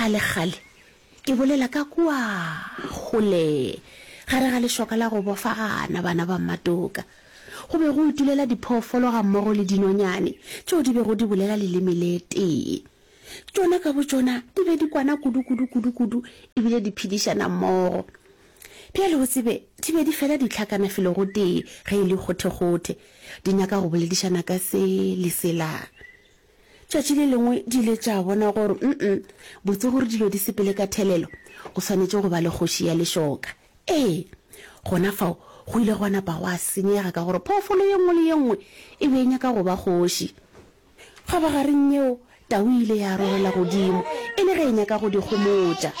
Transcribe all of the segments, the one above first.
kgalekgale ke bolela ka kua gole gare ga lešoka la go bofagana bana ba mmatoka go be go itulela diphoofolo ga mmogo le dinonyane tšeo di bego di bolela leleme le tee tšona ka botšona di be di kwana kudu kudu kudu kudu ebile di phedišana mmogo bjale o tsebe di be di fela ditlhakana felo go tee ge e le kgothekgothe di nyaka go boledišana ka se le selang Tšatši le lengwe di ile tša bona gore mm botse gore dilo di sepele ka thelelo, go swanetše go ba le kgoši ya lešoka. Ee, gona fao go ile gwa napa gwa senyega ka gore phoofolo ye nngwe le ye nngwe e be e nyaka go ba kgoši. Kgobogareng yeo, tau e ile ya rorela godimo e le ge e nyaka go di gomotša.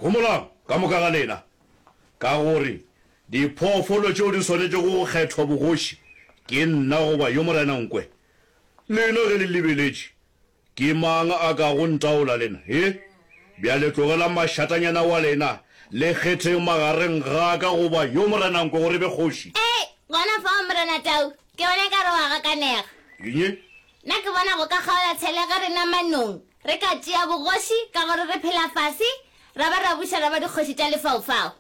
Gomolang, ka moka ga lena, ka gore diphoofolo tšeo di swanetšego go kgethwa bogoši ke nna goba yo Morena Nkwe. Lena ge le lebeletše, ke mang a ka go ntaola lena? He? Bjale tlogelang mašatanyana wa lena, le kgetheng magareng ga ka goba yo Morena Nkwe gore e be kgoši. Ee, gona fao, Morena Tau. Ke bona ekare o a gakanega. Eng? Nna ke bona go ka kgaola tshele ge re na manong, Re ka tšea bogoši ka gore re phela fase, ra ba ra buša ra ba dikgoši tša lefaufau.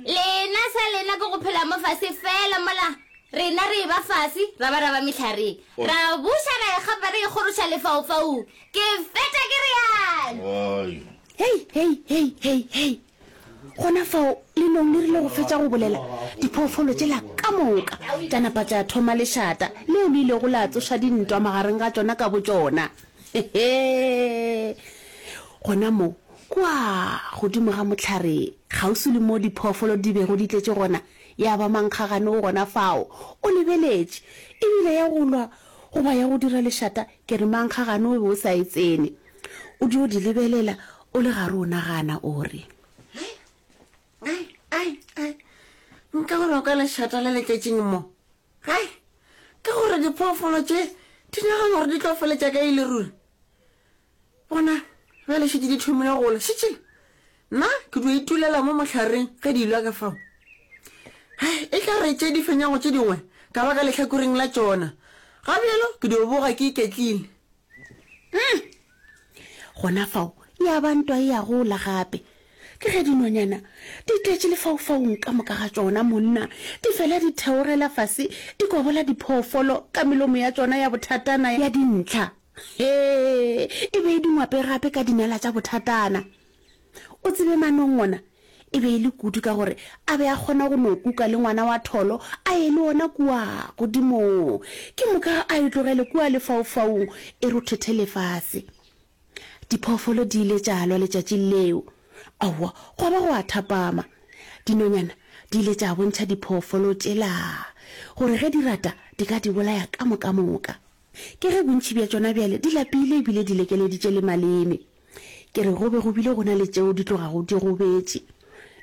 Lena sa lena ke go phela mo fase fela mola, rena re eba fase, ra ba ra ba mehlareng, ra buša ra ikgapa re ikgoroša lefaufaung. Ke feta ke realo. Hei, hei, hei, hei, hei! gona fao lelong le rile go fetša go bolela diphoofolo tšela ka moka tša napa tša thoma lešata leo le ilego la tsoša dintwa magareng ga tšona ka botšona hehe gona mo kwa godimo ga motlhare kgauswi le mo diphoofolo di bego di tletše gona ya ba mankgagane o gona fao o lebeletše ebile ya go lwa goba ya go dira lešata ke re mankgagane o be o sa e tsene O dio di lebelela o le gare o nagana o re. Ai, ai, ai, nka gore o ka lešata le letšetšing mo. Ai, ka gore diphoofolo tše di nagana gore di tlo feletša ka ile ruri. Bona, bjale šetše di thomile go la, šetše Nna ke dio itulela mo mohlareng ge di ilwa ka fao. Hai, e tla re tše di fenyago tše dingwe ka ba ka lehlakoreng la tšona, ga bjalo ke dio boga ke iketlile. Hum! Gona fao ya ba ntwa e ya gola gape. Ke ge dinonyana di tletše lefaufaung ka moka ga tšona, monna, di fela di theogela fase di kobola diphoofolo ka melomo ya tšona ya bothatana ya dintlha. Hee, e be e di ngwape gape ka dinala tša bothatana. O tsebe Manong ona e be e le kudu ka gore a be a kgona go no kuka le ngwana wa tholo a ye le ona kua godimong ke moka a e tlogele kua lefaufaung e rothothe lefase. Diphoofolo di ile tša lwa letšatši leo. Aowa, gwa ba go a thapama. Dinonyana di ile tša bontšha diphoofolo tšela gore ge di rata di ka di bolaya ka mokamoka. Ke ge bontši bja tšona bjale di lapile e bile di lekeleditše le maleme. Ke re go be go bile go na le tšeo di tlogago di gobetše.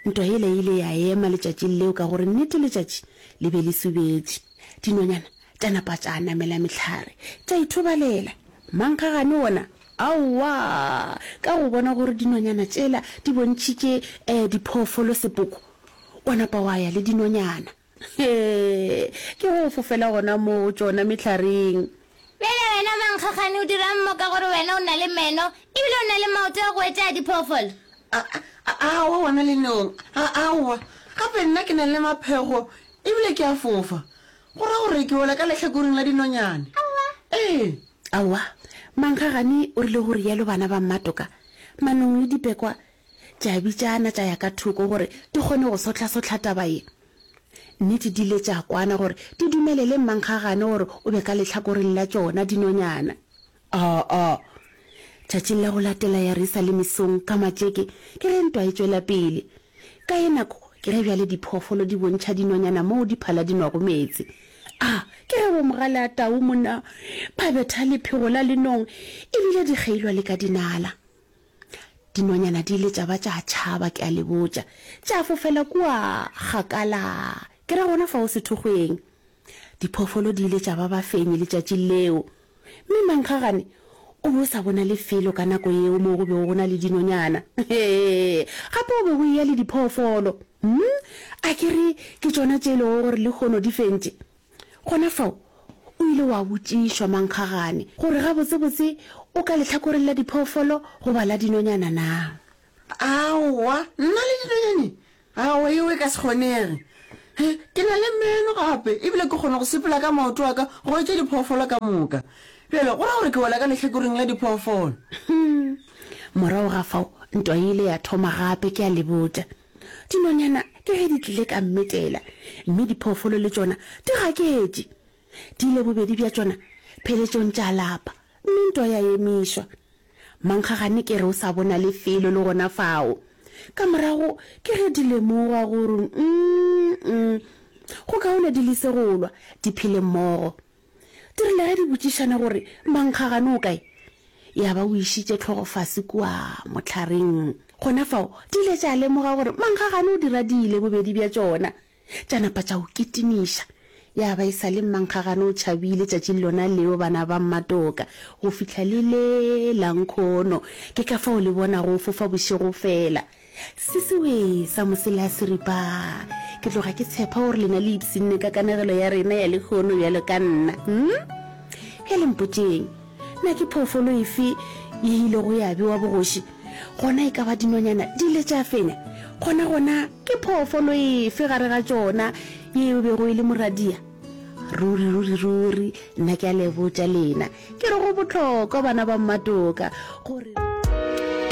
Ntwa yela e ile ya ema letšatšing leo ka gore nnete letšatši le be le subetše. Dinonyana tša napa tša namela mehlare tša ithobalela. Mankgagane wona aowa ka go bona gore dinonyana tšela di bontšhitše diphoofolo sepoko, wa napa wa ya le dinonyana. Hee! Ke go fofela gona moo go tšona mehlaring. Bjale wena mankgagane o dira'ng mo ka gore wena o na le meno ebile o na le maoto a go etša a diphoofolo? Aowa wena Lenyong, aowa. Gape nna ke na le maphego ebile ke a fofa. Go ra gore ke wela ka lehlakoreng la dinonyane. Aowa. Ee. Aowa. Mankgagane o rile go rialo bana ba mmatoka. Manong le dipekwa tša bitšana tša ya ka thoko gore di kgone go sohlasohla taba ye. Nnete di ile tša kwana gore di dumelele mmankgagane gore o be ka lehlakoreng la tšona dinonyana. Oo! Tšatšing la go latela ya re sa le mesong ka matšeke ke ge ntwa e tšwela pele. Ka ye nako ke ge bjale diphoofolo di bontšha dinonyana moo di phala di nwago meetse. A ke ge Bomogaleatau monna ba betha lephego la lenong e bile di kgeilwa le ka dinala. Dinonyana di ile tša ba tša tšhaba, ke a le botša, tša fofela kua kgakala, ke ra gona fao sethokgweng. Diphoofolo di ile tša ba bafenyi letšatši leo. Mme mankgagane o be o sa bona lefelo ka nako yeo moo go bego go na le dinonyana. Hee, gape go be go eya le diphoofolo. Hm, a ke re ke tšona tše e lego gore lehono di fentše? Gona fao o ile wa botšišwa mankgagane gore gabotsebotse o ka lehlakoreng la diphoofolo goba la dinonyana na. Aowa, nna le dinonyane? Aowa, yeo e ka se kgonege. He, ke na le meno gape, ebile ke kgona go sepela ka maoto a ka go etša diphoofolo ka moka. Bjale, go ra gore ke wela ka lehlakoreng la diphoofolo. Morago ga fao, ntwa e ile ya thoma gape, ke a le botša. Dinonyana ke ge di tlile ka mmetela, mme diphoofolo le tšona di gaketše. Di ile bobedi bja tšona pheletšong tša lapa, mme ntwa ya emišwa. Mankgagane ke re o sa bona lefelo le gona fao. Ka morago ke ge di lemoga gore, umm-mm, go kaone di lise go lwa, di phele mmogo. Di rile ge di botšišana gore, Mankgagane o kae? Ya ba o išitše tlhogo fase kua mohlaring. Gona fao di ile tša lemoga gore Mankgagane o di radile bobedi bja tšona. Tša napa tša o kitimiša. Ya ba e sa le Mankgagane o tšhabile tšatši lona leo bana ba Mmatoka go fihla le le la nkhono. Ke ka fao le bonago o fofa bošego fela. Sesiwe sa mosela se ripa. Ke tloga ke tshepa gore lena le ipsinne ka kanegelo ya rena ya lekgono bjalo ka nna. Hmm? Bjale mpotšeng, na ke phoofolo efe ye ile go ya bewa bogoši? Gona e ka ba dinonyana di ile tša fenya? Gona gona ke phoofolo efe gare ga tšona ye e bego e le moradia? Ruri, ruri, ruri, nna ke a lebotša lena. Ke re go bohlokwa, bana ba mmatoka, gore.